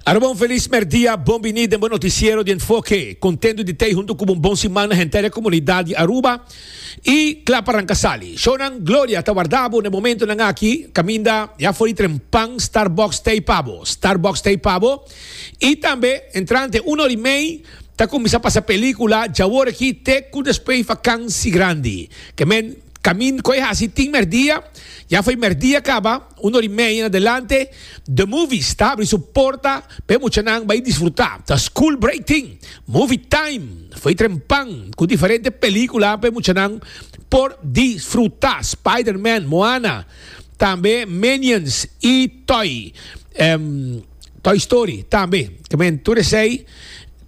Arobon feliz merdia, bon bini den bo noticiero di enfoke. Contento di tei hunto cu bon bon siman na henter e comunidad di Aruba y cla pa ranca sali. Shonan Gloria ta warda bo na e momentonan aki, caminda ya for di tren pan Starbucks tei pa bo, Starbucks tei pa bo. Y tambe entrante una or y mei ta cuminsa pasa pelicula djawor aki te cu despues vakansi grandi. Ke men, camin, cu e haci tin merdia, ya for di merdia caba. Un or i media na delante, The Movies ta habri su porta pa e muchanan bai disfrutá. Ta school break tin, Movie Time, foi trempan ku diferente pelíkula pa e muchanan por disfrutá, Spider-Man, Moana, tambe Minions i Toy. Toy Story tambe kemen tur esey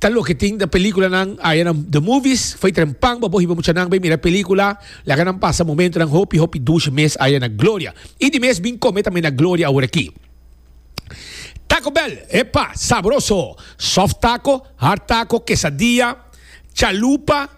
ta loke tin na película nan aya na the movies foi trempan bo bohi bo mucha nan bay mira película laga nan pasa momento nan hopi hopi dushi mes aya na gloria y di mes bin come tambe na gloria awor aki Taco Bell epa sabroso soft taco hard taco quesadilla chalupa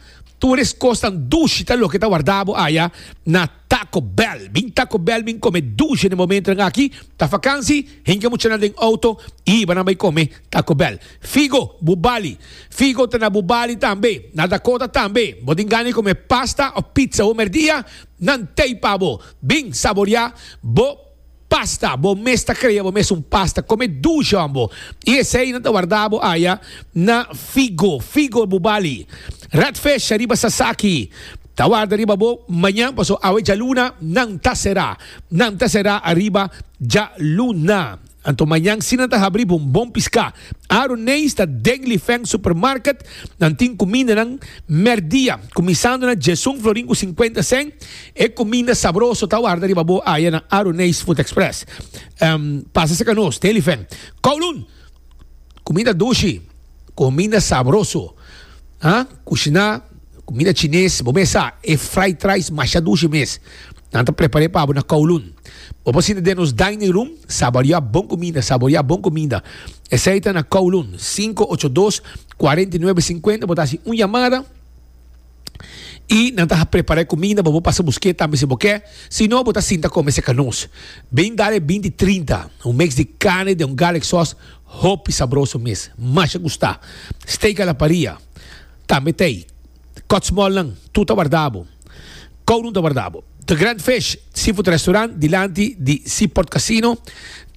tur es cos tan dushi ta loke ta warda bo aya na Taco Bell, bin Taco Bell bin come dusha de momentonan aki, ta vakansi, hinca muchanan den auto y hiba nan bay come Taco Bell. Figo, bu bali. Figo ta na bu bali tambe. Na Dakota tambe. Bo tin gana di come pasta of pizza homer dia? Nan tey pa bo. Bin saboria bo. Pasta, bo mes ta crea bo mes un pasta con e dujon bo y esey nan ta warda bo aya na figo, figo bo bali rat fesh riba sasaki ta warda riba bo mañan paso awe djaluna nan ta sera, nan ta sera ariba djaluna anto mañan si nan ta habri bo un bon pisca. Aro Nees ta den Lifeng Supermarket, nan tin kumindanan mèrdia, kuminsando na djèsun florin ku sinkuenta sèn. E kuminda sabroso ta warda riba bo aya na Aro Nees Food Express. Pasa serka nos den Lifeng. Kowloon, Kuminda dushi, kuminda sabroso. Ah, kushiná kumida chinés, bo mes sa, e fried rice masha dushi mes. Nan ta prepar'é pa bo na Kowloon. Bo por sinta den nos dining room, saboriá bon kumida, saboriá bon kumida. Esei ta na Kowloon, sinku ocho dos, kuarenta i nuebe, sinkuenta. Bo ta hasi un yamada. I nan ta prepar'é kuminda pa bo pasa busk'é tambe si bo ke, si no bo ta sinta kome seka nos. Bin dale binti trinta, un mix di carne den un garlic sòs hopi sabroso mes, masha gusta. Steak a la parrilla, tambe t'ey. Kòtsmòl nan, tur ta warda bo. Kowroom ta warda bo. The Grand Fish, seafood restaurant dilanti di Seaport Casino.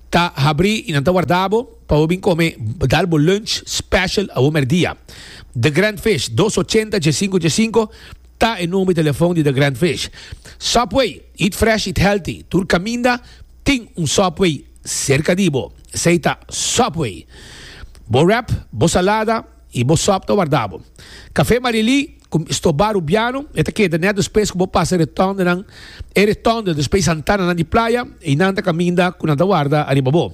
Ta habrí i nan ta wardá bo pa bo bin kome dal bo lunch special awor merdia. The Grand Fish, dos ochenta dje sinku dje sinku, ta e number di telefon di The Grand Fish. Subway, eat fresh, eat healthy, tur kaminda tin un Subway serka di bo. Esei ta Subway. Bo wrap, bo salada. I bo sòp ta warda bo. Kafé Marilí, ku stobá rubiano, e ta keda nèt despues ku bo pasa retòndenan. E retònde despues santananan di playa, i nan ta kaminda ku nan ta warda ariba bo.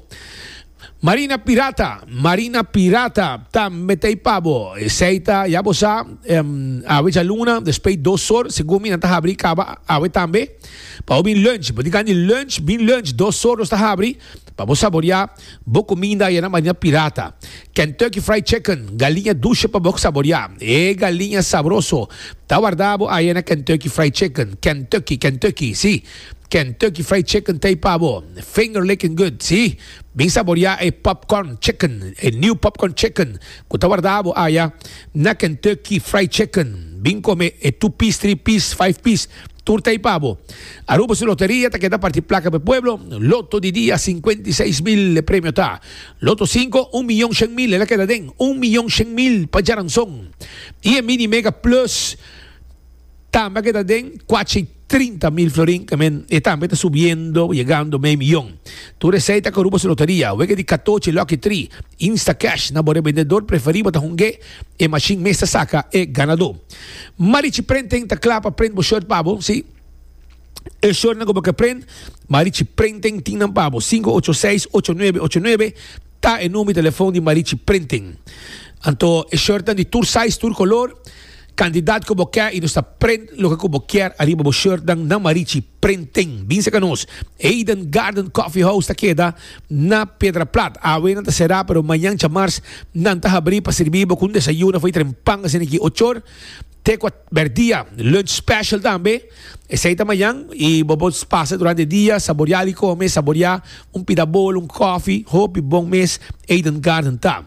Marina Pirata, Marina Pirata, ta metei pa bo. Esei ta, ya bo sa, awe djaluna, despues dos sor, segun mi nan ta habri kaba awe tambe. Pa bo bin lùnch, bo di kan di lùnch, bin lùnch, dos sor nos ta habri pa bo saboriá. Bo kuminda ayana mania pirata. Kentucky Fried Chicken, galiña dushe pa bo saboriá. E galiña sabroso ta warda bo aya na Kentucky Fried Chicken. Kentucky, Kentucky, sí. Kentucky Fried Chicken ta ei pa bo. Finger licking good, sí. Bin saboriá e popcorn chicken, e niu popcorn chicken ku ta warda bo aya na Kentucky Fried Chicken. Bin kome e two piece, three piece, five piece. Tur ta ipa bo. Aruba su loteria ta keda parti plaka p'e pueblo. Loto di dia, sinkuenta i seis mil e premio ta. Loto sinku, un miyon shen mil el a keda den. Un miyon shen mil pa djaranson. I e Mini Mega Plus tambe a keda den, kuacha i trinta mil florin. Kemen e tambe ta subiendo, yegando mei miyon. Tur esei ta ku Aruba su loteria. Wega di katochi, Lucky Three, Instacash na bo rebendedor preferibo ta hung'é. E machine mes ta saca e ganador. Marichi Printing ta cla pa print bo shirt pa bo, si e shirt nan cu bo ke print, Marichi Printing tin nan pa bo. Cinco ocho seis ocho nuebe ocho nuebe ta e number di telefoon di Marichi Printing. Anto e shirt nan di tur size, tur color, cantidad cu bo ke y nos ta print loke cu bo kier ariba bo shirt nan na Marichi Printing. Binse ca nos. Eden Garden Coffee House ta keda na Piedra Plat. Awe nan ta será pero mañan djamars nan ta habrí pa sirbí bo cu un desayuno fai tren pan asina aki ocho or te kuat ber dia. Lunch special tambe esey ta mañan y bo por pasa durante dia saboreá di come, saboreá un pida bol, un coffee, hopi bon mes Eden Garden ta.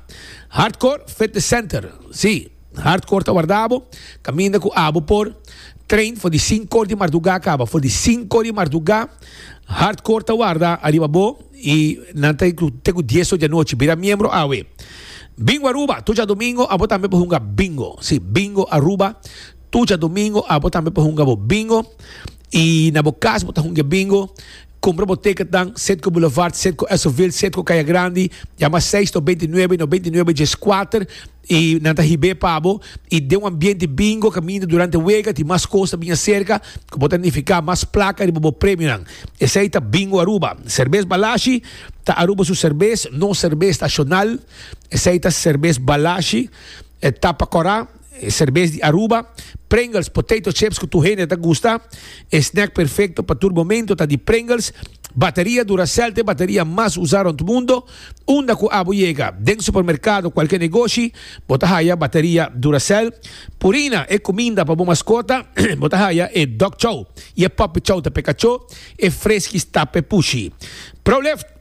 Hartcourt Fitness Center, sí. Hard core ta warda abo, kaminda ku abo por train for di sink core di mardugá kaba. For di sink core di mardugá hard core ta warda ariba abo i nan ta te ku dies or di anochi bira miembro awe. Bingo Aruba, tur djadomingo abo tambe por hunga bingo. Si, bingo Aruba, tur djadomingo abo tambe por hunga bo bingo. I na bo kas bo ta hunga bingo, kumpra bo tiketnan Citgo Boulevard, Citgo Esovil, Citgo Kaya Grandi, yama seis to binti nuebe, no binti nuebe djes kuater. I nan ta hib'é pa bo, i den un ambiente bingo, kaminda durante wega, tin mas kos ta biña serka ku bo ta nifiká mas plaka riba bo premionan. Esei ta Bingo Aruba. Serbes Balashi ta Aruba su serbes, nos serbes nashonal. Esei ta Serbes Balashi, e tapa kòrá, e serbes di Aruba. Pringles, potato chips ku tur hende ta gusta. E snack perfekto pa tur momentu ta di Pringles. Bateria Duracell ta e bateria mas usá rònt mundo. Unda cu abo yega, den supermercado o cualkier negoshi, bo ta haya bateria Duracell, Purina, e cuminda pa bo mascota, bo ta haya e Dog Chow y e Puppy Chow ta peka cho, e freskis ta pe pushi. Prolift,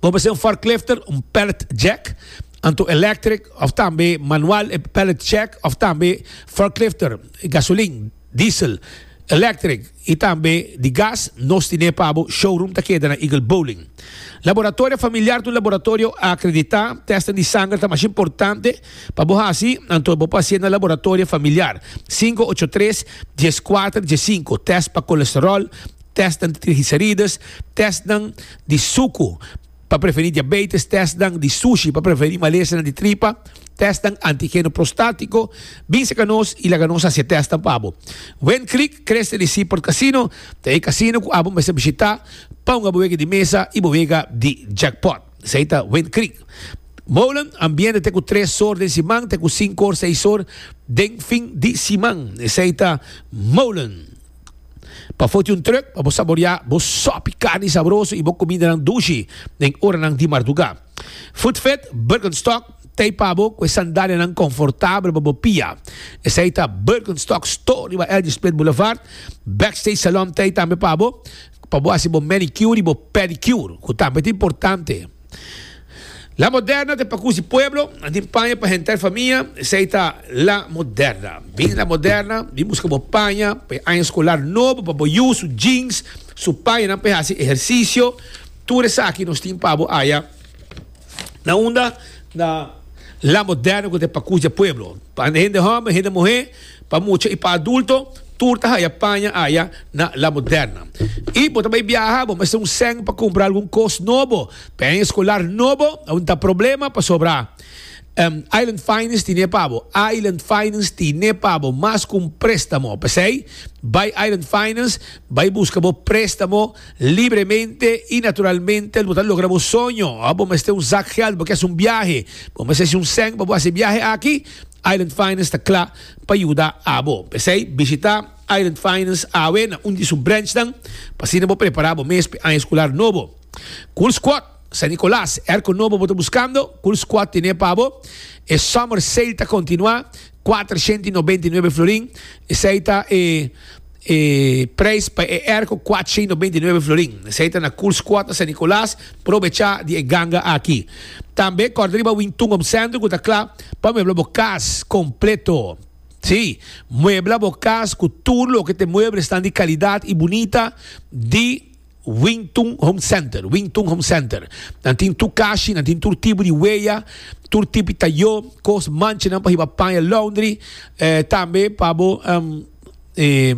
Bo mester un forklifter, un pallet jack, anto electric of tambe manual, e pallet jack of tambe forklifter, gasolin, diesel, electric, y tambe di gas, nos tine pa bo showroom ta keda na Eagle Bowling. Laboratorio familiar ta un laboratorio acredita, testing di sanger ta mas importante pa bo haci, anto bo por haci na laboratorio familiar, cinco ocho tres, dies cuater, dies cinco, test pa colesterol, test nan di trigicerides, test nan di sucu, Pa prevení diabetes, tèstnan di sushi pa prevení malesanan di tripa, tèstnan antigeno prostátiko, bin seka nos i laga nos hasi e tèstnan pa bo. Wind Creek Creste di Seaport Casino ta e casino ku abo mester bishitá pa un aboega di mesa i boega di jackpot. Esei ta Wind Creek Molen, ambiente te ku tres or den siman te ku sinku or seis or den fin di siman. Esei ta Molen. Pa foti un trùk pa bo saboriá bo sòpi karni sabroso i bo kumindanan dushi den oranan di mardugá. Food Fit Birkenstock t'ei pa bo ku e sandalianan konfortabel pa bo pia. Esei ta Birkenstock Store riba Elgin Split Boulevard. Backstage Salon t'ei tambe pa bo, pa bo hasi bo manicure i bo pedicure, ku tambe ta importante. La Moderna ta pa kusi pueblo, a tin paña pa henter famia, esei ta La Moderna. Bin La Moderna, bin buska bo paña pa e aña skolar nobo pa bo yu, su jeans, su pañanan pa e hasi ehersisio, tur esaki nos tin pa bo aya. Na unda? Na La Moderna ku ta e pa kusi e pueblo, pa hende homber, hende muhé. Pa mucha y pa adulto, tur ta haya paña aya na La Moderna. Y bo ta bay biaha, bo mester un cen pa cumpra algun cos nobo. Paña escolar nobo a winti ta problema pasobra Island Finance tin e pa bo. Island Finance tin e pa bo mas cu un prestamo. P'esey, bay Island Finance, bay busca bo prestamo libremente y naturalmente bo ta logra bo soño. Bo mester un zak geld, bo kier haci un biahe, bo mester haci un cen pa bo haci e biahe aki. Island Finance ta kla pa yuda abo. P'esei, bishitá Island Finance awe na un di su brenchnan pa asina bo prepará bo mes p'e aña eskular nobo. Kul Skwot, San Nikolas, Erko Nobo bo ta buskando? Kul Skwot ten'é pa bo. E Summer Sale ta kontinuá, kuater shenti nobenta i nuebe florin. Esei ta e. E prijs pa e erko kuatsha i nobenta i nuebe florin. Esei ta na Cool Squad na San Nicolas. Probecha di e ganga aki. Tambe kòrda riba Wintungom Sèntro ku ta kla pa muebla bo kas kompleto. Sí, muebla bo kas ku tur loke t'e muebres nan di kalidat i bunita di Wingtun Home Center, Wingtun Home Center. Nan tin tur kashi, nan tin tur tipo di weya, tur tipo di tayó, kos manchanan pa hiba paña laundry, tambe pa bo.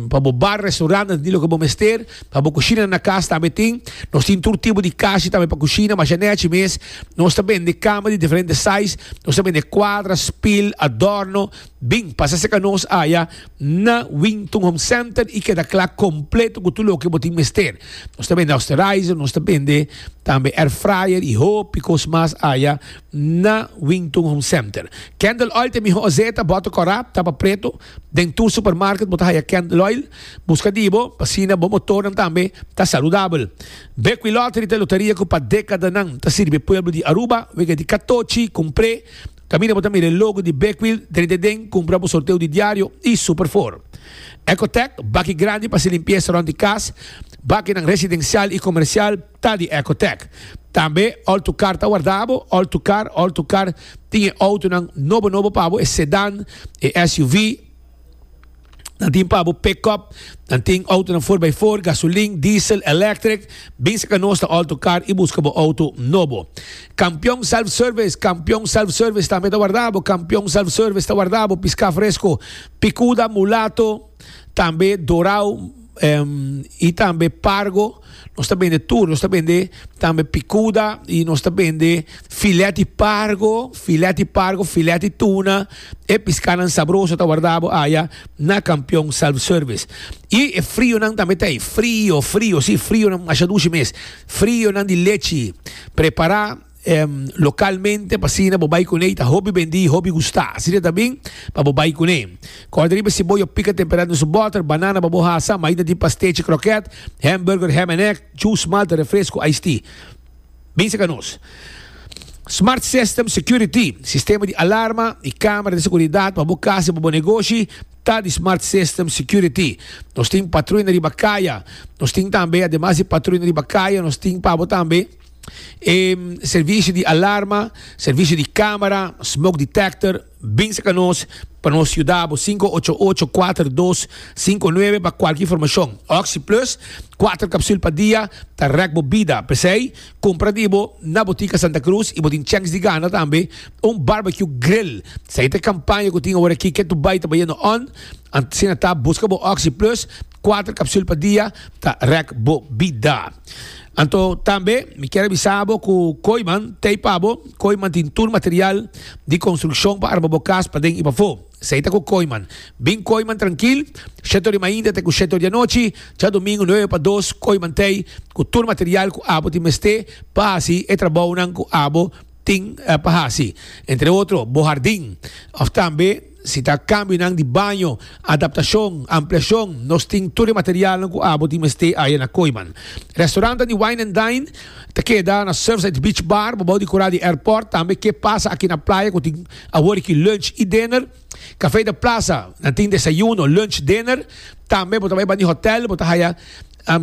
pa bo bar, restaurant, nan tin loke bo mester, pa bo kushina nan kas tambe tin, nos tin tur tipo di kashi tambe pa kushina, masha nèchi mes, nos ta bende kama di diferente sais, nos ta bende kuadra, spil, adorno, bin pasa serka nos aya na Winton Home Center i keda kla kompleto ku tur loke bo tin mester, nos ta bende osterizer, nos ta bende tambe air fryer i hopi kos mas aya na Winton Home Center, Candle Oil te miho ozeta, bòter kòrap, tapa preto, Den tur supermarket bo ta haya candle oil. Busca di bo, p'asina bo motornan tambe ta saludabel. Bequi Lottery ta e loteria cu pa decadanan ta sirbi e pueblo di Aruba. Wega di catochi, cumpre. Caminda bo ta mira e logo di Bequi drenta e den, cumpra bo sorteo di diario y super for. Ecotec, baki grandi p'haci limpieza rond di cas, bakinan residencial y comercial. ta di Ecotec. Tambe ol tu car ta warda bo, ol tu car, ol tu car tin e autonan nobo nobo pa bo, e sedan, e SUV, nan tin pa bo pick-up, nan tin autonan four by four, gasolin, diesel, electric, bin sa ka nos ta ol tu car y busca bo auto nobo. Campeon Self Service, Campeon Self Service tambe ta warda bo, Campeon Self Service ta warda bo, pisca fresco, picuda, mulato, tambe dorao, y tambe pargo nos ta bende tur nos ta bende tambe picuda y nos ta bende filet di pargo filet di pargo filet di tuna e piscanan sabroso ta wardabo aya na campeon self service y e frionan tambe ta ayi frio frio si frio masha dushi mes frionan di lechi prepara Localmente pa asina bo bay cun'e y ta hopi bendi y hopi gusta. Asina ta bin pa bo bay cun'e. Corda riba ciboya pica temperad na su butter, banana pa bo hasa, mayi na di pastechi croquet, hamburger, ham and egg, juice, malta, refresco, iced tea. Bin seca nos. Smart System Security, sistema di alarma y camera di seguridad pa bo casa y pa bo negoshi ta di Smart System Security. Nos tin patruina riba caya. Nos tin tambe, ademas di patruina riba caya, nos tin pa bo tambe. E servisio di alarma, servisio di camera, smoke detector, binse ca nos pa nos yuda bo sinku ocho ocho kuater dos sinku nuebe pa kualki informashon. Oxi Plus, kuater kapsul pa dia, ta rèk bo bida. P'esei, kumpra di bo na Botica Santa Cruz i bo tin chèns di gana tambe un barbecue grill. Sa i ta e kampaña ku tin aworakí, ke tu bai ta bayendo on? Asina ta, buska bo Oxi Plus. Kuater kapsul pa dia ta rèk bo bida. Anto tambe mi kier a bisa bo ku koiman ta ei pa bo. Koiman tin tur material di konstrukshon pa arma bo kas paden i pafó. Esei ta ku koiman. Bin koiman trankil, sheto di mainta te ku sheto di anochi, djadumingu nuebe pa dos koiman ta ei ku tur material ku abo tin mester pa hasi e trabounan ku abo tin pa hasi. Entre otro bo hardin òf tambe. Si ta cambionan di baño, adaptacion, ampliacion, nos tin tur e materialnan cu abo tin mester aya na Koiman. Restaurantnan di Wine and Dine ta keda na Surfside Beach Bar, babao di cora di airport, tambe Ke Pasa Aki na Playa cu tin awor aki lunch y dinner. Café de Plaza nan tin desayuno, lunch, dinner. Tambe bo ta bay banda di hotel bo ta haya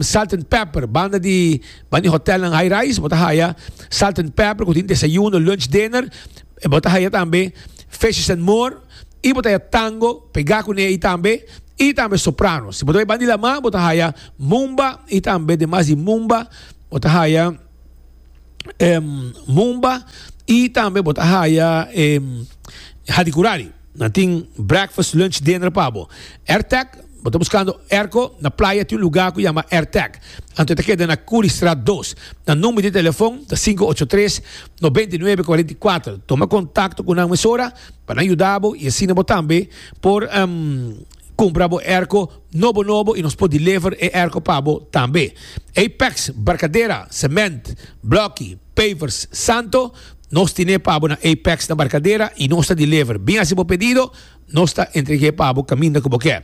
Salt and Pepper, banda di banda di hotelnan high rise bo ta haya Salt and Pepper cu tin desayuno, lunch, dinner. Bo ta haya tambe Fishes and More y bo ta haya Tango pega cune ayi tambe y tambe Soprano. Si bo ta bai banda di lama bo ta haya Mumba y tambe demas di Mumba bo ta haya Mumba y tambe bo ta haya Hadi Kurali. Nan tin breakfast, lunch, dinner pa bo. Airtag, Bo ta buskando airco? Na playa tin un lugar cu yama Airtag. Anto e ta keda na Curriestraat dos. Nan number di telefon ta sinku ocho tres, nobenta i nuebe, kuarenta i kuater. Toma contacto cu nan mesora pa nan yuda bo y asina bo tambe por cumpra bo airco nobo nobo y nos por deliver e airco pa bo tambe. Apex, Barcadera, Cement, Blokkie. Pavers Santo, Nos tine pa bo na Apex na Barcadera y nos ta deliver. Bin haci bo pedido, nos ta entregue pa bo caminda cu bo ke.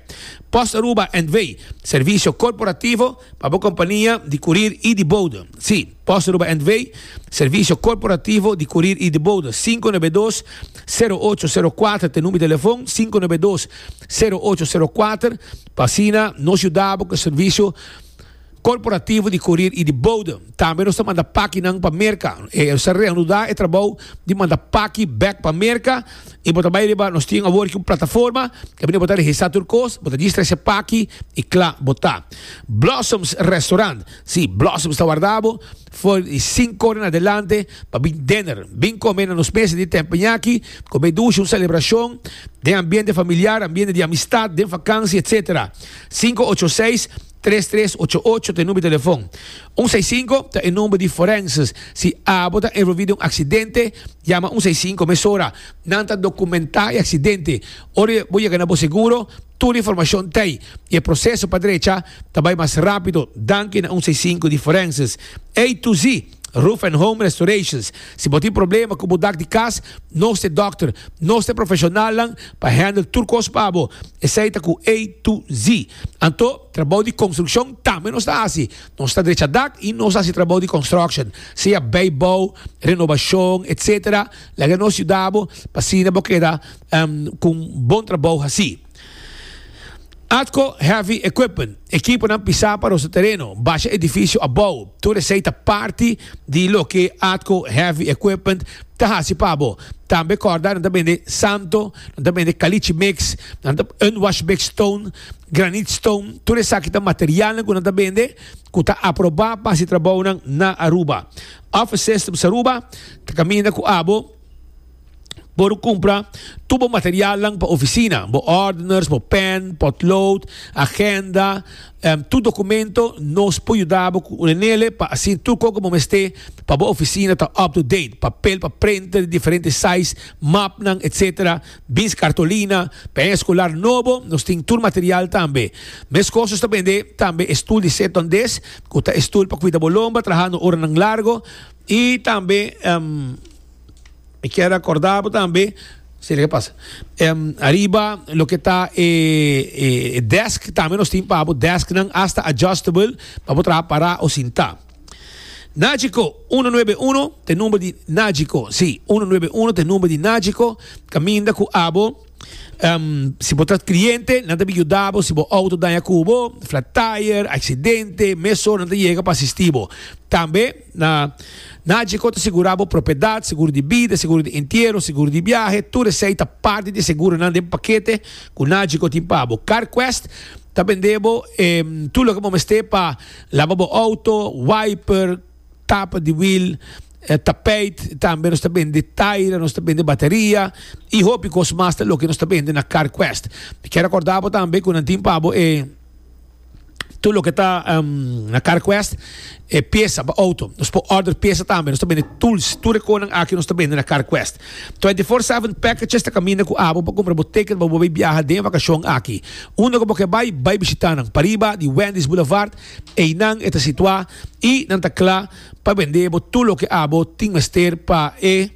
Post Aruba and Way, Servicio corporativo pa bo compania di curir y di bode. Si, Post Aruba and Way, Servicio corporativo di curir y di bode, sinku nove dos, sero ocho sero kuater ta e number di telefon, sinku nove dos, sero ocho sero kuater, pa asina nos yuda bo cu e servicio. Korporativo di Kurir i di Bodem. Tambe nos ta manda pakinan pa Merka. E sa reanuda e trabou di manda paki bek pa Merka i bo ta bai riba, nos tin awor aki un plataforma kaminda di bo ta registrá tur kos, bo ta distra esei paki i kla bo ta. Blossoms Restaurant. Sí, Blossoms ta warda bo for di sinku ora na adelante pa bin dinner. Bin kome na nos mesa di tempeñá aki, kome dushi un selebrashon den ambiente familiar, ambiente di amistat, den fakansia, etsetera. Sinku ocho seis Tres tres ocho ocho ta e number di telefon. Un seis sinku ta e number di forenses. Si abo ta envolvi den un aksidente, yama un seis sinku mesora. Nan ta dokumentá e aksidente. Ora bo yega na bo seguro, tur informashon ta ei i e proseso pa drecha ta bai mas rápido danki na un seis sinku di forenses. Ey tu sí! Roof and Home Restorations. Si bo tin problema ku bo dak di kas, nos ta e dòkter. Nos ta e profeshonalnan pa handle tur kos pa bo. Esei ta ku A to Z. Anto, trabou di konstrukshon tambe nos ta hasi. Nos ta drecha dak i nos ta hasi trabou di construction, sea beibou, renobashon, etsetera. Laga nos yuda bo pa asina bo keda ku un bon trabou hasí. Atco Heavy Equipment, ekiponan pisá pa nos tereno, basha edifisio abou, tur esei ta parti di loke Atco Heavy Equipment ta hasi pa bo. Tambe kòrda nan ta bende santo, nan ta bende kalichi mix, nan ta unwash big stone, granite stone, tur esaki ta materialnan ku nan ta bende ku ta aprobá pa hasi trabounan na Aruba. Office Systems Aruba ta kaminda ku abo. Bo lo cumpra tur bo materialnan pa oficina, bo ordeners, bo pen, potlood, agenda, em, tur documento, nos por yuda bo cu un enele pa asina tur co cu bo mester pa bo oficina ta up to date, papel pa prenta di diferente size, mapnan, etc. Bins cartolina, pen escolar nobo, nos tin tur material tambe. Mescos nos ta bende tambe e stoel di Seton Desk, cu ta e stoel pa cuida bo lomba trahando oranan largo, Y tambe mi kier recorda bo tambe ariba loke ta e desk tambe nos tin pa bo desk nan hasta adjustable pa bo traha para o sinta. Nagico uno nuebe uno ta e number di Nagico si uno nuebe uno ta e number di Nagico caminda cu abo si bo ta cliente nan ta bin yuda bo si bo auto daña cubo flat tire accidente mesora nan ta yega pa asisti bo tambe Na NACGI cu ta sigura bo propiedad, seguro di bida, seguro di entiero, seguro di biahe, tur esey ta parti di e seguronan den pakete cu NACGI cu tin pa bo. CarQuest ta bende bo e tur loke bo mester pa laba bo auto, wiper, tapa di wiel, tapijt, tambe nos ta bende taira, nos ta bende bateria y hopi cos mas ta loke nos ta bende na CarQuest. Mi kier recorda bo tambe cu nan tin pa bo e. tur loke ta na carquest e piesa pa auto nos por order piesa tambe nos ta bende tools tur e conan aki nos ta bende na carquest 24 7 packages ta caminda cu abo pa cumpra bo ticket pa bo bay biaha den vacacion aki unda cu bo ke bay bay bishita nan pariba di Wendy's Boulevard eynan e ta situa y nan ta cla Pa bendé bo tur loke abo tin mester pa e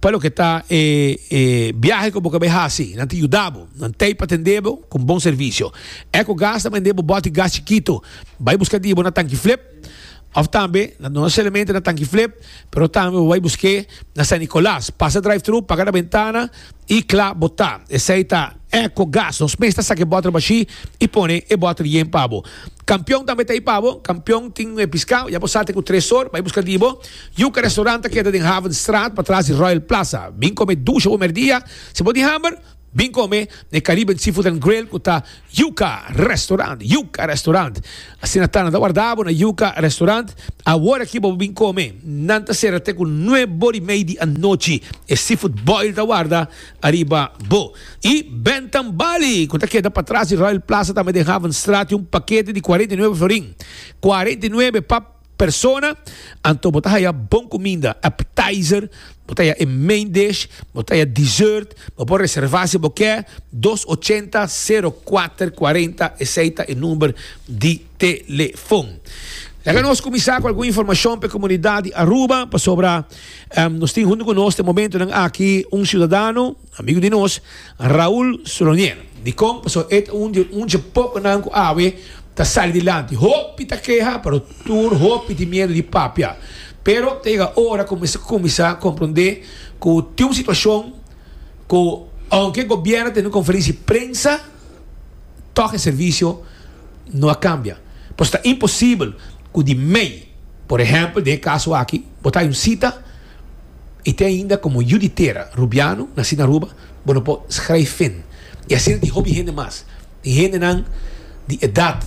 pa loke ta e e biahe ku bo ke bai hasi. Nan tin yuda bo. Nan tei pa tendé bo ku bon servisio. Ecogas ta bendé bo boti gas chikitu. Bai buska di bo na Tanki Flip òf tambe no solamente na Tanki Flip pero tambe bo bai busk'é na San Nicolas. Pasa drive-thru, paga na bentana. y cla bo ta, esey ta eco gas, nos mes ta saca e bottle bashi y pone e bottle yen pa bo. Campeon tambe ta ey pa bo, Campeon tin e piscao, ya bo sa tin cu tres or, bay busca di bo, Yuca Restaurant ta keda den Havenstraat patras di Royal Plaza, bin come dusha bo merdia, si bo tin hamber, bin come n'e Caribbean Seafood and Grill cu ta. Yuca Restaurant Yuca Restaurant Asina ta, nan ta warda bo na Yuca Restaurant. Awor aki bo por bin kome. Nan ta sera te ku nue bor i mei di anochi. E seafood boil ta warda ariba bo. I Bentham Bali, ku ta keda patras di Royal Plaza tambe den Havenstraat, tin un pakete di kuarenta i nuebe florin. Kuarenta i nuebe pa. Persona, Anto bo ta haya bon cuminda, appetizer, bo ta haya e main dish, bo ta haya dessert, bo por reserva si bo kier, dos ochenta, sero kuater kuarenta, esey ta e number di telefon. Laga nos cuminsa cu algun informacion pa e comunidad di Aruba, pasobra nos tin hunto cu nos te momentonan aki un ciudadano, Amigu di nos, Raul Solonier, di kon paso e ta un di un dje pokonan ku awe ta sali dilanti. Hopi ta keha, pero tur hopi tin miedu di papia. Pero ta yega ora ku mester kuminsá komprondé ku tin un situashon ku ounke e gobièrnu a tene un konferensia di prensa, tòg e servisio no a kambia. Pasobra ta imposibel ku di mei, por ehèmpel den e kaso aki, bo ta hay un sita, I te ainda komo yu di tera Rubiano, nasí na Aruba, bo no por schrijven. I asina di hopi hende mas. Tin hendenan di edat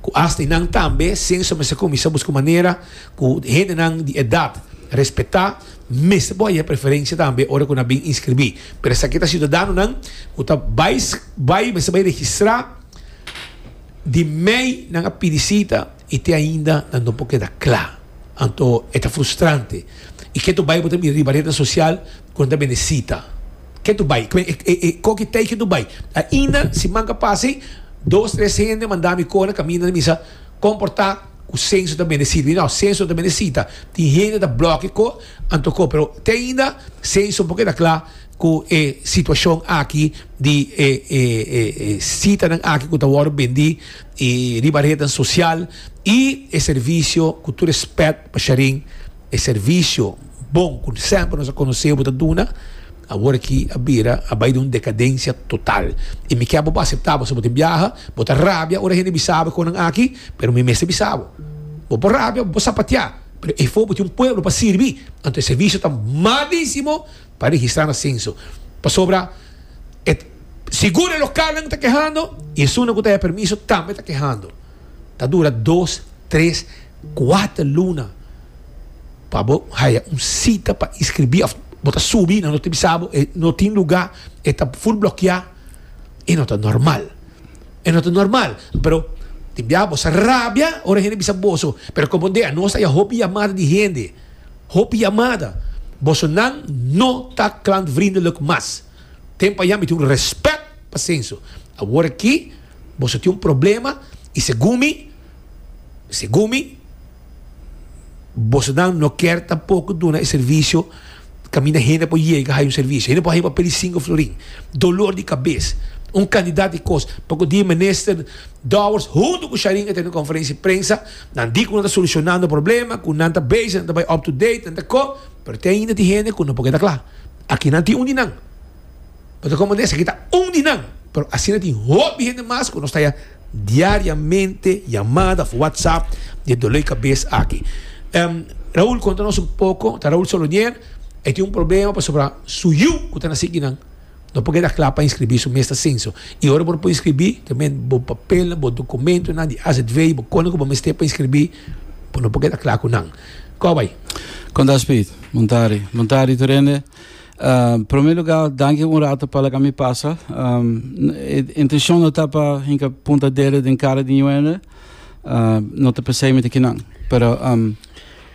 ku asta i nan tambe Censo mester kuminsá buska un manera ku hendenan di edat respetá mester por haya preferencia tambe ora ku nan bin inskribí. Pero esaki ta siudadanonan ku ta bai bai mester bai registrá di mei nan a pidi sita. i te ainda nan no por keda kla. Anto e ta frustrante. I ke to bai bo ta mira riba rede sosial ku nan ta bende sita? Ke to bai? Ko ki tei ke to bai? Ainda siman ka pasa ei, dos tres hende manda mi kore kaminda na misa, Kon por ta ku Sensu ta bende sita? Mi di, No, Sensu no ta bende sita. Tin hende ta blòk e ko, anto ko. Pero te ainda Sensu no por keda kla. cu e situacion aki di e citanan aki cu ta wordo bendi riba rednan social y e servicio, cu tur respet pa Shareen, e servicio bon cu semper nos a conoce bo ta duna, awor aki a bira a bay den un decadencia total y mi kier bo por acepta pasobra bo tin biaha, bo ta rabia ora hende bisa bo e conan aki, pero mi mester bisa bo, bo por rabia, bo por sapatea, pero efo bo tin un pueblo pa sirbi, anto e servicio ta malísimo. pa registrá na senso, pasobra e seguro lokalnan ta kehando i esunnan ku ta haya permiso tambe ta kehando. Ta dura dos, tres, kuater luna pa bo haya un sita pa inskribí òf bo ta subi nan lo ta bisa bo e no tin lugá, e ta ful blokeá. E no ta normal, e no ta normal. Pero, tin bia bo sa rabia ora hende bisa boso, pero komprondé, anos ta haya hopi yamada di hende. Hopi yamada, boso nan no ta klantvriendelijk mas. Tem pa yami tin un respect pa Senso. Awor aki boso tin un problema y segun mi, segun mi, boso nan no ker tampoco duna e servicio caminda hende por yega hay un servicio. Hende por hay pa pedi cinco florin. Dolor di cabez. Un cantidad di cos. Pacu di Minister Dowers hunto cu Sharyn a tene conferencia di prensa. Nan di cu nan ta solucionando problema, cu nan ta bezig, nan ta bay up to date, nan ta cu, pero tin ainda tin hende cu no por keda cla. Aki nan tin un di nan. Bo ta componer esaki ta un di nan, pero asina tin hopi hende mas cu nos ta ya diariamente yamada of WhatsApp di e doley cabes aki. Ehm, Raul conta nos un poco, ta Raul Solonier, e tin un problema pasobra su yu cu ta naci aki nan, No por keda kla pa inskribí su mes ta senso i ora bo por inskribí ta men bo papelnan, bo dokumentonan di azv i bo kosnan ku bo mester pa inskribí bo no por keda kla ku nan. Kòp bai. Konta Speed. Muntari. Muntari tur hende. Promé lugá danki un ratu pa laga mi pasa. E intenshon no ta pa hinka punta dedo den kara di ñu hende. No ta pensá e mete kinan. Pero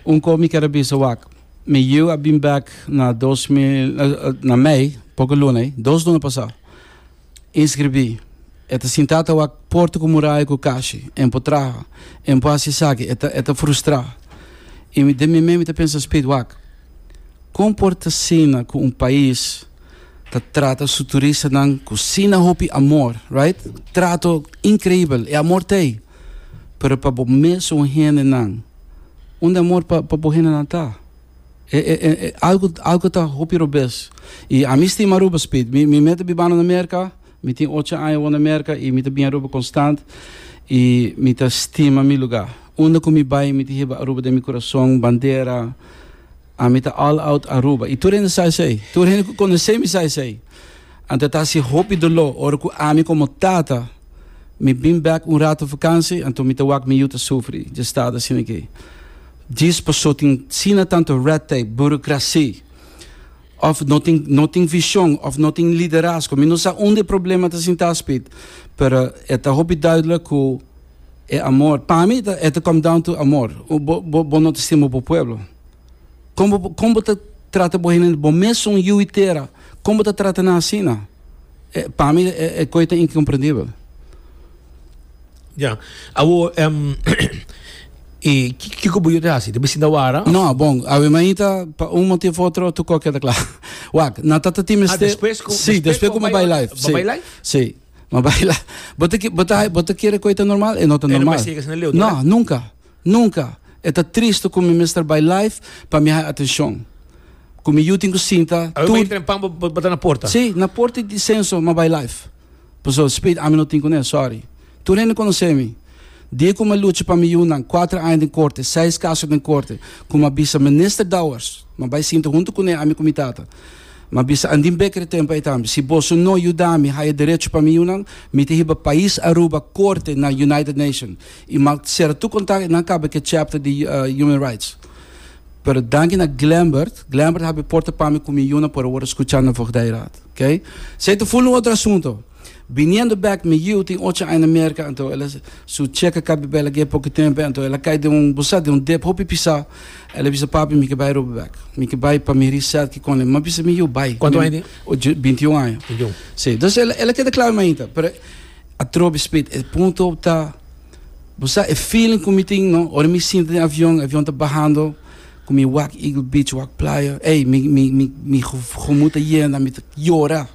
un kos mi ker a bisa wak. Mi yiu a bin bek na dos mil, na mei, poco luna ei, dos luna pasá. Inscribí. E ta sintá ta wak porta cu muraya cu cashi. En por traha. En por haci esaki. E ta, e ta frustrá. I mi den mi mei mi ta pensa, Speed, wak. Con por ta asina cu un pais ta trata su turistanan cu sina hopi amor, right? Trato increibel. E amor ta ei. Pero pa bo mesun hendenan, unda e amor pa pa bo hendenan ta? E e e e algu algu ta hopi robes. I ami stima Aruba, Speed. Mi mi mi a ta bibando na Merka, mi tin ocho aña awor na Merka i mi ta bin Aruba konstant i mi ta stima mi lugar. Unda ku mi bai mi ta hiba Aruba den mi kurason, bandera. Ami ta all out Aruba y tur hende sa esey. Tur hende cu conoce mi sa esey. Anto ta haci hopi dolor ora cu ami como tata mi bin bek un rato vakantie, anto mi ta wak mi yu ta sufri dje estado asina aki. Djis paso tin asina tanto red tape, burocracy, of no tin no tin vision of no tin liderazgo. Mi no sa unda e problema ta sinta Speed, pero e ta hopi duidelijk cu e amor, pa mi e ta e ta come down to amor. Bo bo bo no ta stima bo pueblo. Kon bo kon bo ta trata bo hende bo mes son yu i tera kon bo ta trata nan asina e pa mi e e koi ta inkomprendibel Ya, awor em e ki- kiko bo yo te hasi te be sinta wara of no bon awe ma inta pa un motivo of otro tu ko keda kla wak nan ta ta tin ah mester despues ku si despues ku ma bai live ba si bai live si ma bai live bo ta ki bo ta bo ta kere koi ta normal e no ta e no normal bai siga asina leu no tora nunka. Nunca e ta triste cu mi mester bay live pa mi haya atencion. Cu mi yu tin cu sinta Awe bay tur. tren pan bo bo ta na porta. Si, na porta y di censo ma bay live. Paso, Speed, ami no tin cune, sorry. Tur hende conoce mi. Dia cu mi a lucha pa mi yunan, cuatro aña den corte, seis caso den corte, cu mi a bisa Minister Dowers, mi a bay sinta hunto cune, ami cu mi tata. Mi a bisa Andin Bekker e tempo ay tambe, si boso no yuda mi haya derecho pa mi yunan, mi ta hiba pais Aruba corte na United Nations. I mak sertu kontak i nan kaba ke chapter di Human Rights. Pero danki na Glembert, Glembert a habri porta pa mi ku mi yunan por a wòrdu skuchá na Voogdijraad. K. Esei ta full un otro asunto. Biniendo bèk, mi yiu tin ocho aña na Merka, anto el a su cheka kabi bela gué poco tempu, anto el a kai den un, bo sa, den un dep hopi pisá. El a bisa, Papi, mi ke bai Aruba bèk. Mi ke bai pa mi hiri sèt ki kon. El a bisa mi yiu, Bai. Kuantu aña tin? Binti un aña. Binti un. Sí. Entonces el a keda kla mi mainta, pero. Atrobe Smith, E punto ta, bo sa e feeling ku mi tin no, ora mi sinta den avion, e avion ta bahando, ku mi wak Eagle Beach, wak playa, ey, mi, mi, mi, mi gomut ta yena, mi ta yora,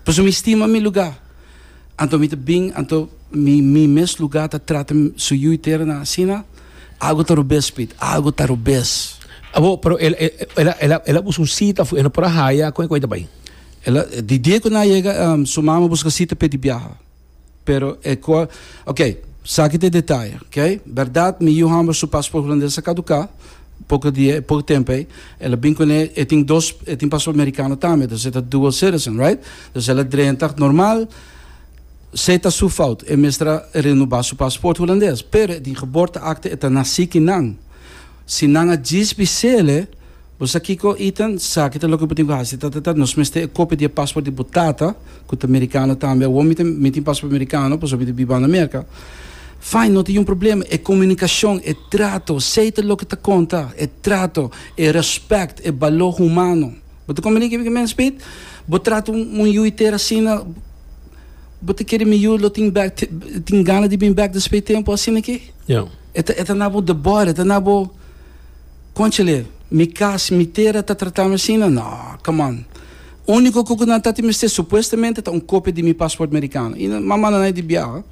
pasobra mi stima mi luga. Anto mi ta bin, anto mi, mi mes luga ta trata su yu i tera nan asina, algo ta robes Smith, algo ta robes. Abo, pero el, el, el, el a, el a buska un sita afuera, el no por a haya, kon e ku e ta bai? El a di dia cu nan a yega su mama busca cita p'e di biaha. Pero e cua, ok, saki ta e detaye, ok. Berdad mi yu hamber su paspoort hulandes a caduca poco dia, poco tempo ey. El a bin cu ne, e tin dos, e tin paspoort mericano tambe, dus e ta dual citizen, right? Dus el a drenta normal, sey ta su fout, e mester a renuba su paspoort hulandes. Pero e di geboorteakte e ta naci ki nan. Si nan a djis bisele, Bo sa kiko, Ethan? Sa kita loke bo tin ku hasi. Tatatata, nos mester e kopia di e pasport di bo tata, ku ta merikano tambe. Awor mi ta, mi tin pasport merikano, pasobra mi ta biba na Merka. Fine, no tin yon problema. E komunikashon, e trato, sei ta loke ta konta. E trato, e rèspèkt, e baló humano. Bo ta komprendí kico ke mens meet? Bo trata un, un yu iter asina, bo ta kere mi yu lo tin bèk, tin gana di bin bèk despues e tempu asina ke? Ja. E ta, e ta na bo debòrda, e ta na bo. Conchele, mi cas, mi tera ta tratami asina? No, come on. Unico cu cu nan ta tin mester supuestamente ta un copia di mi paspoort mericano. Y nan manda nai di biaha.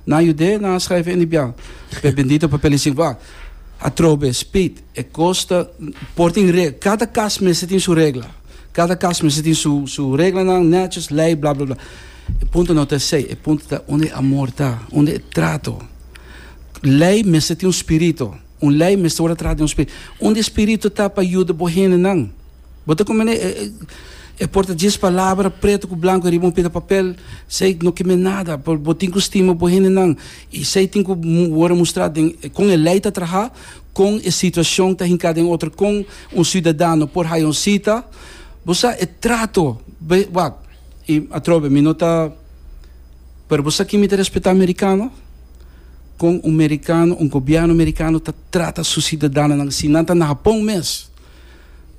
Nan yud'é, nan a schrijf en di biaha. Pe bendito papel y sin wak. Atrobe, speed, e cos ta, por tin re, cada cas mester tin su regla. Cada cas mester tin su, su reglanan, netjes, ley, bla, bla, bla. E punto no ta esey, e punto ta unda e amor ta, unda e trato. Ley mester tin un spirito. Un lei mester word atrás di un spiritu. Un di spiritu ta pa yuda bo hendenan. Bo ta kumene e, e, e por ta djis palabra preto ku blanku riba un pida papel, sei no kime nada, por bo tin ku stima bo hendenan. I sei tin ku word mustrá den kon e lei ta trahá, kon e situashon ta hinká den otro, kon un siudadano por haya un sita. Bo sa e trato, be, wak, i atrobe mi no ta, pero bo sa kin mi ta respetá amerikano? kon un merikano, un gobièrnu merikano ta trata su siudadanonan así. Nan ta na Hapon mes.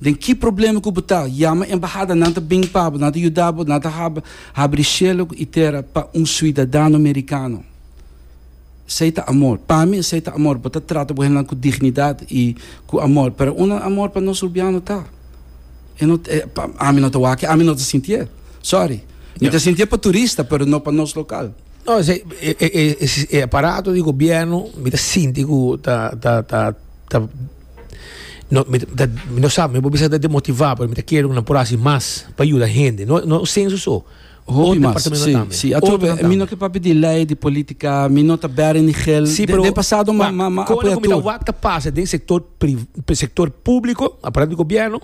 Den ki problema ku bo ta? Yama e embahada, nan ta bin pa bo, nan ta yuda bo, nan ta haba. Habri shelu i tera pa un siudadano merikano. Esei ta amor. Pa mi esei ta amor. Bo ta trata bo hendenan ku dignidat i ku amor. Pero un amor pa nos urbiano ta. E no ta, e, pa ami no ta wak e. Ami no ta sintié. Sòri. Mi ta sintié pa turista, pero no pa nos lokal. No esei e aparato di gobierno mi ta sinti ku ta ta ta ta no mi ta mi no sa mi no por bisa ta demotivá pero mi ta kere ku nan por hasi mas pa yuda hende no no un senso so Hopi mas si si departamentonan tambe ato otro nan mi no tambe. ke papia di lei di politika mi no ta bere ni gel Si den pero den pasado ma ma ma kone apoya ku mi ta tur wak ta pasa den sektor pri sektor públiko aparato di gobierno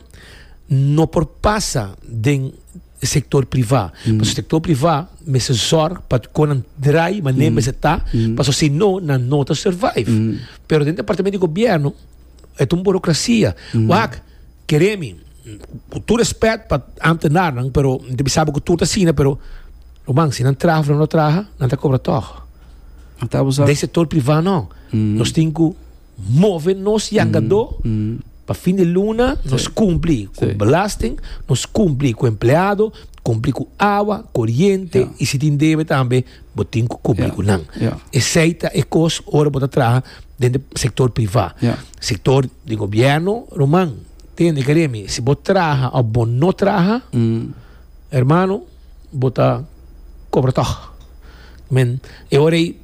no por pasa den e sektor privá. Pasobra sektor privá mester sòrg pa kon nan drai manera mester ta, pasobra si no nan no ta survive. Pero den departamento di gobièrnu e ta un burokrasia. Wak kere mi, ku tur rèspèt pa amtenarnan, pero mi ta bisa bo ku tur ta asina, pero lo man si nan traha of nan no traha nan ta kobra tòg. Den sektor privá no. Nos tin ku Move nos yangadó pa fin di luna nos kumpli ku belasting, nos kumpli ku empleado, kumpli ku awa, koriente i si tin debe tambe bo tin ku kumpli ku nan. Esei ta e kos ora bo ta traha den di sektor privá. Sektor di gobièrnu, ruman, tende kere mi, si bo traha òf bo no traha, hermano, bo ta kobra tòg. Men, e ora ei.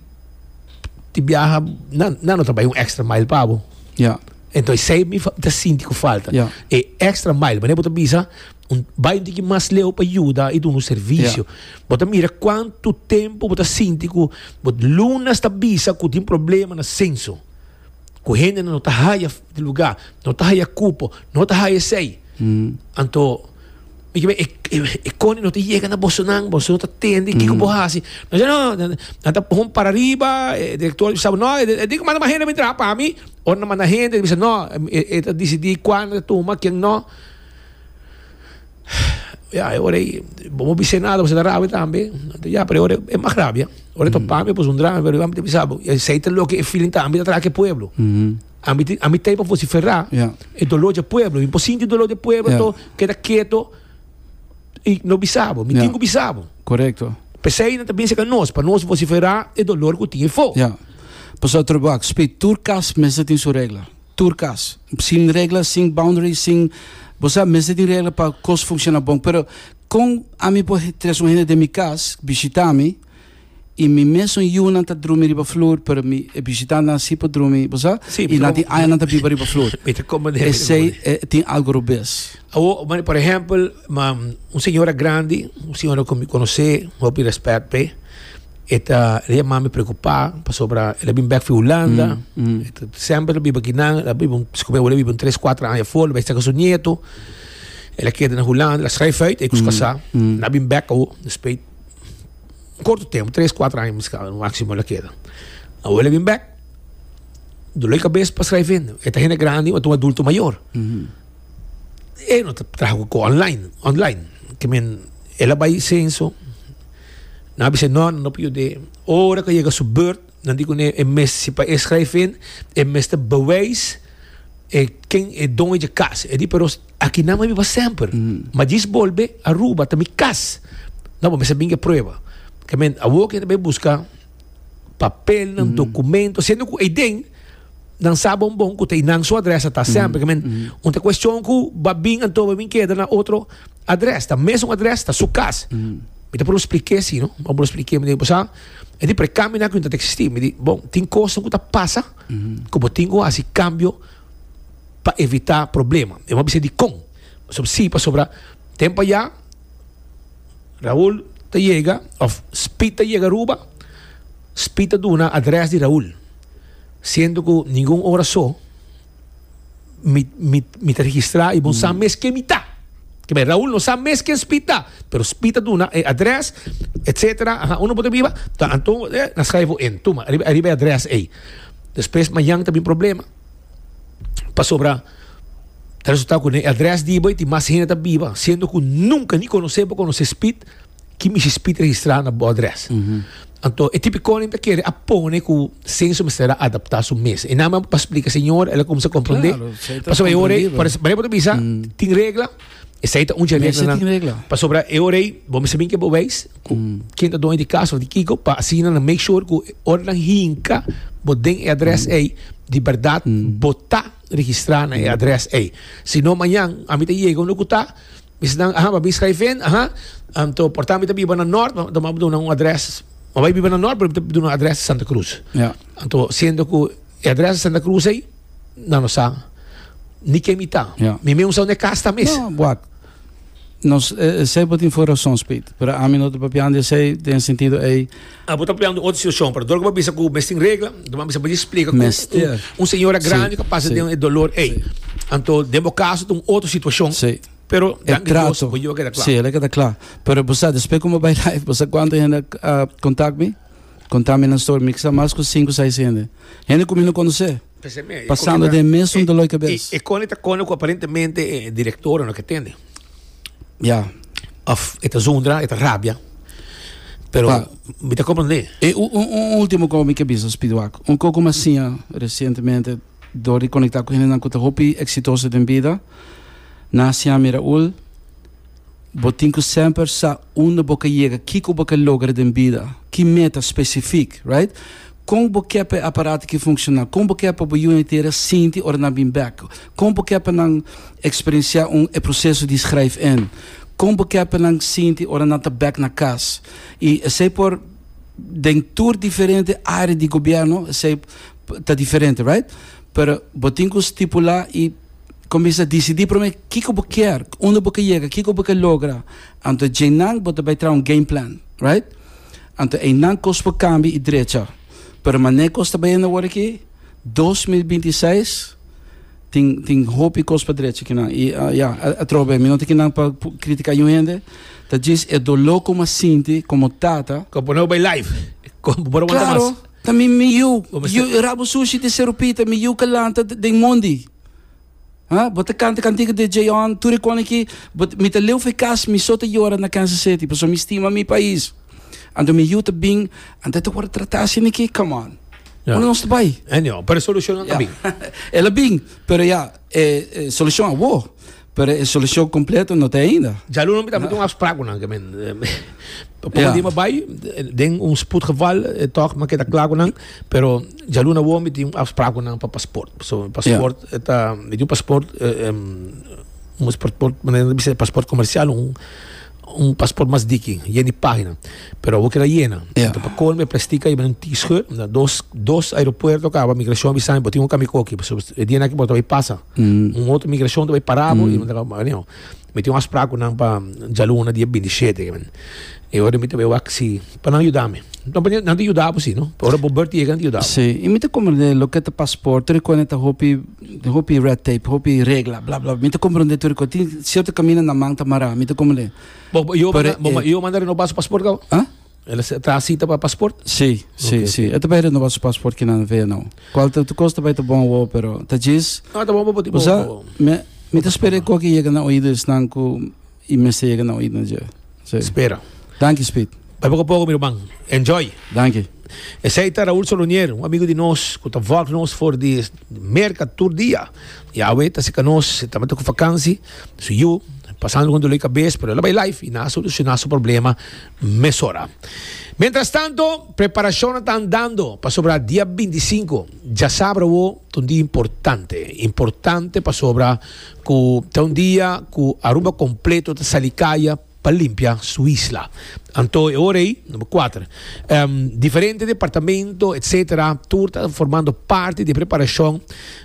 di biaha nan nan no ta bai un extra mile pa bo Ja. entonces sei mi fa- ta sinti ku falta Ja. e extra mile mane bo ta bisa un bai un tiki mas leu pa yuda i duna un servicio bo ta mira kuantu tempu bo ta sinti ku bo lunes ta bisa ku tin problema na senso ku hende no ta haya lugá, no ta haya kupo, no ta haya esei. Anto, mi kibe, e koni no ta yega na bosonan, boso no ta tendi kiko bo hasi. No dice, no, nan ta pon para riba, e direktor di sabi, no, e tin ku manda mas hende bini traha pa mi. Ora nan manda hende, e bisa, no, e ta disidí kuan ta tuma, ken no. Ya, e ora ei, bo no bisa nada, bo sa ta rabia tambe. Anto ya, pero e ora e mag rabia. Ora ta pami, e pusu un drama, pero ami ta bisa bo, esei ta loke e feeling ta ami ta traka e pueblo. Ami tin, ami ta ei pa vociferá Ya. e dolor dje pueblo. Mi por sinti e dolor dje pueblo, Ya. anto keda keto i no bisa bo. Mi Ya. tin ku bisa bo. Correcto. P'esei nan ta bin seka nos, pa nos vociferá e dolor ku tin ei fo. Ya. Pasobra, Troboac, Spit, tur kas mester tin su regla. Tur cas. Sin regla, sin boundary, sin bo sa, mester tin regla pa cos funciona bon. Pero con ami por tres un hende den mi cas bishita mi y mi mesun yunan ta drumi riba floor pero mi e bishitantenan si por drumi, bo sa, Sí, mi y ta nan tin como, aña nan ta biba riba floor. mi ta como den, mi ta como Esey den. e tin algo robes. Awo, mane, por ehempel, ma, un señora grandi, un señora cu mi conoce, hopi respect p'e. E ta ria mami preocupa pasobra el a bin bek fi Hulanda. Mm, mm. E ta semper ta biba kinan. El a biba, un- si come, el a biba un tres, cuatro aña voor. El a saka su nieto. El a keda na Hulanda. El a schrijf uit. E kus kasa. mm. Na bin bek awo. Dus pei un korto tempo, tres, cuatro aña miskien, no maximo el a keda. Awo el a bin bek. Dolor di kabes pa schrijf in. E ta hende grandi, ma ta un adulto mayor. Mhm. E no ta traha ku ko online. Online. Ke men, el a bai senso. Nan a bisa e, No, nan no por yud'é. Ora ku a yega su burt, nan di kuné, E mes, si pa e skrijfin, e mester bewijs e ken e doño dje kas. E di, Pero aki nan a biba semper. Ma djis bolbe Aruba, ta mi kas. Nan bo mester binga e prueba. Ke men, awor ke nan ta bai buska. papelnan, documentonan, siendo cu eyden nan sa bon bon cu ta y nan su adres a ta asem, porque men, un ta cuestion cu ba bin anto ba bin keda na otro adres, ta mesun adres, ta su cas. Mi ta probo spliké así, no, mi ta probo spliké, mi di, bo sa, e di precambio nan cu tin ta existi, mi di, bon, tin cosnan cu ta pasa cu bo tin cu haci cambio pa evita problema. Mi no a bisa dicon, pasobra si, pasobra tempo ayá, Raul ta yega of Speed ta yega Aruba, Speed ta duna adres di Raul. Siendo cu ningun ora so mi, mi, mi ta registra y bon sa mes ken mi ta. Ke bay, Raul no sa mes ken Speed ta, pero Speed ta duna e adres, etcetera. Aha, uno bota biba, ta anto, eh, na schrijf bo in, tuma, ariba, ariba e adres ey. Despues mañan ta bin problema. Pasobra ta resulta cu ne adres di bo tin mas hende ta biba, siendo cu nunca ni conoce bo conoce spit, ki mishi spit registrado na bo adres. Mm -hmm. Anto, e tipiconin ta kere a pone cu senso mester a adapta su mes. E nada pa explica señor, el a comensa comprende. Claro, Pasobra e ore, para, para e bisa, mm. tin regla, Esei ta un dje regla nan. regla. Pasobra e ora ei, bo mester bin ke bo wijs ku mm. ken ta doño di kas of di kiko, pa asina nan make sure ku ora nan hinka bo den e adres mm. ei, di berdad mm. bo ta registrá na e adres ei. Si no mañan, a mi ta yega un loku ta, mi se dan, aha, ma bin schrijven, aha, um, to porta mi ta biba na Noord, ma, ma duna un adres, ma bai biba na Noord, pero mi ta duna adres Santa Cruz. Ja. Anto, siendo ku E adresa e Santa Cruz ey, nan no sa ni ken mi ta. Ja. Mi meun sa un e cas ta mes. No, wak. Nos, e, esey bo tin for razons, Piet. Pero ami no ta papiando di esey den e sentido ey. Ah, bo ta papiando di un otro situacion, pero dor ku bo a bisa ku mes tin regla, bo a bisa baña splika ku un, Mester. un, un señora grandi Si, ku a pasa si. den e dolor ey. Si. Anto, den bo kaso ta un otro situacion, Si. pero E danki Dios trato. bo yiba keda kla. Si, el a keda kla. Pero bo sa, despues ku mi a bai live, bo sa kuantu hende a, a contact mi? Contame nan story, mi kisa mas cu cinco seis hende. Hende cu mi no conoce. Pasando den mesun dolor di cabes. E Connie ta cona cu aparentemente e directora no ke tende. Ya. Of e ta zundra, e ta rabia. Pero Pa- mi ta comprende. E un, un, un ultimo co mi ke bisa, Spiduak. Un co cu mi a siña recientemente door di conecta cu hendenan cu ta hopi exitoso den bida. Nan a siña mi Raul. Bo tin cu semper sa unda bo ca yega, kico bo ca logra den bida, ki meta specific, right? Con bo ke pa e aparato ki funciona? Con bo ke pa bo yunan e tera sinti ora nan bin bek? Con bo ke pa nan experiencia un e proceso di schrijf-in? Con bo ke pa nan sinti ora nan ta bek na cas? Y esey por den tur diferente area di gobierno, esey ta diferente, right? Pero bo tin cu stipula y. Cominsá dicidí promé kiko bo kier, unda bo ke yega, kiko bo ke logra. Anto djeinan bo ta bai traha un game plan, right? Anto einan kos por cambia i drecha. Pero mané kos ta bayendo awor aki, dos mil binti seis tin tin hopi kos pa drecha kinan. I ya, atroba bay, mi no ta aki nan pa critiká yu hende, ta djis e doló ku mi a sinti komo tata. Komo bo no bai live, bo por aguanta mas. Claro. Ta mi mi yu, yu rabo sushi di serupita, mi yu kalanta den mondi. Ha, bo ta kanta kantica di J-on, tur e koni ki, bo, mi ta leu fi cas, mi so ta yora na Kansas City, paso mi stima mi pais. Anto mi yu ta bin, anto e ta wordo trata asi ni ki, come on. Ya. Unda nos ta bai? Anyhow, pero e solucionnan a bin. El a bin, pero ya, e, e solucion a wor. Pero e solucion completo no ta ainda. Ja luno mi ta mete un afspraak cu nan ke men Poko di mi bay den un spoedgeval toch mi keda klaar cu nan pero ja luno awor mi tin un afspraak cu nan pa paspoort paso mi paspoort ta mi tin un paspoort un paspoort comercial un Un pasport mas diki, yen di pagina. Pero awor keda yena. Yeah. Enton pa colmo e plastica yiba un tischeur. Na dos, dos aeropuerto caba migracion bisa mi bo tin un cami coki. So, e día naki bo ta bay pasa. Mm. Un otro migracion ta bay para bo. Mm. Anyhow, mi tin un afspraak cu nan pa djaluna dia 27 ke men. E ora mi ta bay wak si pa nan yuda mi. Nan pa nan ta yuda bo si, no. Ora bo beurt yega nan ta yuda bo. Sí. Y mi ta comprende loke ta pasporte, rico nan ta hopi. Hopi red tape, hopi regla, bla, bla, bla. Mi ta comprende tur e cos. Tin cierto caminda na man ta mará. Mi ta como le... Bo, bo, yo, Pero, manda, bo, eh, yo manda renovar su paspoort gauw. Huh? Él se- trae cita para paspoort. Sí, sí, Ok, sí. ok. E ta bai renova su paspoort ki nan vea nou. Cual ta, tu cos ta bai ta bon wow, pero ta djis. No, tá bom, bom, bom, bom, Usa, bom. me, mi ta spera e cos ki yega na oído esnan cu I mester yega na oidnan dje. Si. Spera. Danki Speed. Bai poko poko mi ruman. Enjoy! Danki. Esei ta Raul Solonier, un amigu di nos ku ta vòlg nos for di Merka tur dia. Yahweh ta sika nos, e tabata ku vakansi na su yu, pasando kon dulei kabes, pero el a bai live i nan a solushoná su problema mesora. Mientrastanto, preparashonnan ta andando pasobra dia binti sinku, djasabra awor, ta un dia importante. Importante pasobra. Ku ta un dia ku Aruba kompleto ta sali kaya pa limpia su isla. Anto e ora ei, number kuater, em, diferente departamento, etc. Tur ta formando parti di preparashon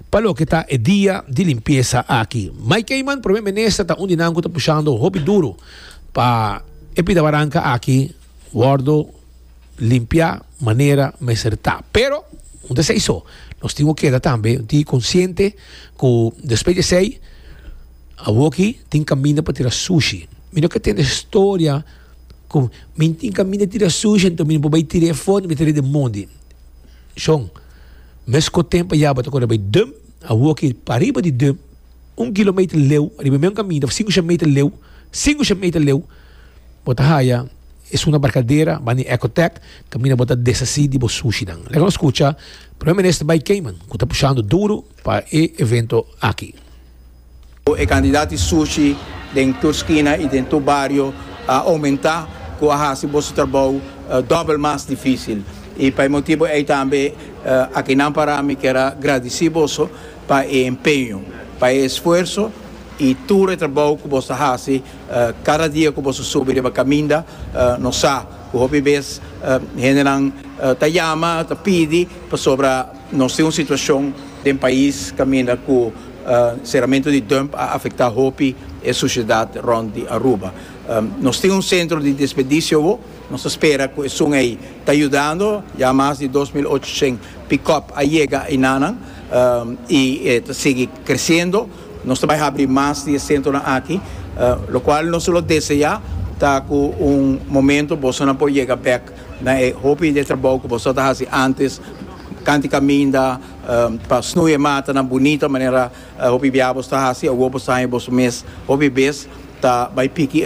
pa loke ta e dia di limpiesa aki. Mike Eman, Primer Minister, ta un di nan ku ta pushando hopi duru pa e pidabaranka aki. Wordo limpia manera mester ta. Pero un ta sei so, nos tin ku keda tambe un tin konsiente ku despues di esei awoki tin kaminda pa tira sushi. Mi no ke tene storia ku mi tin kaminda tira sushi enton mi no por bai tira e for, mi ta redi mondi. Shon, mes ku tempo a yaga bo ta kore bai dum, awoki pariba di dum, un kilometer leu, riba e mesmo kaminda, sinku shemeter leu, sinku shemeter leu. Bo ta haya esuna barkadera ban di Ecotec kaminda bo ta desasi di bo sushinan. Leka nos skucha Primer Minister Bai Keiman ku ta pushando duru pa e evento aki. E kantidad di sushi den tur skina i den tur bario a oumentá ku a hasi boso trabou dòbel mas difísil. I pa e motibu ei tambe akinan pará mi kier a gradisí boso pa e empeño, pa e esfuerso i tur e trabou ku boso ta hasi Kada dia ku boso subi riba kaminda, nos sa ku hopi bes hendenan ta yama, ta pidi pasobra nos tin un situashon den pais kaminda ku seramentu di dump a afektá hopi e susiedat rònt di Aruba. Nos tin un sentro di desperdisio awor, nos ta spera ku esun ei ta yudando. Ya mas di dos mil ochocientos pickup a yega einanan i e ta sigui kresendo. Nos ta bay habri mas di e centronan aki, lo cual nos ta lo desea ta cu un momento bosonan por yega bek na e hopi di e trabou cu boso ta haci antes, canti caminda pa snoei e matanan bunita manera hopi biaha boso ta haci, awor boso ta haña boso mes hopi bes ta bay piki e.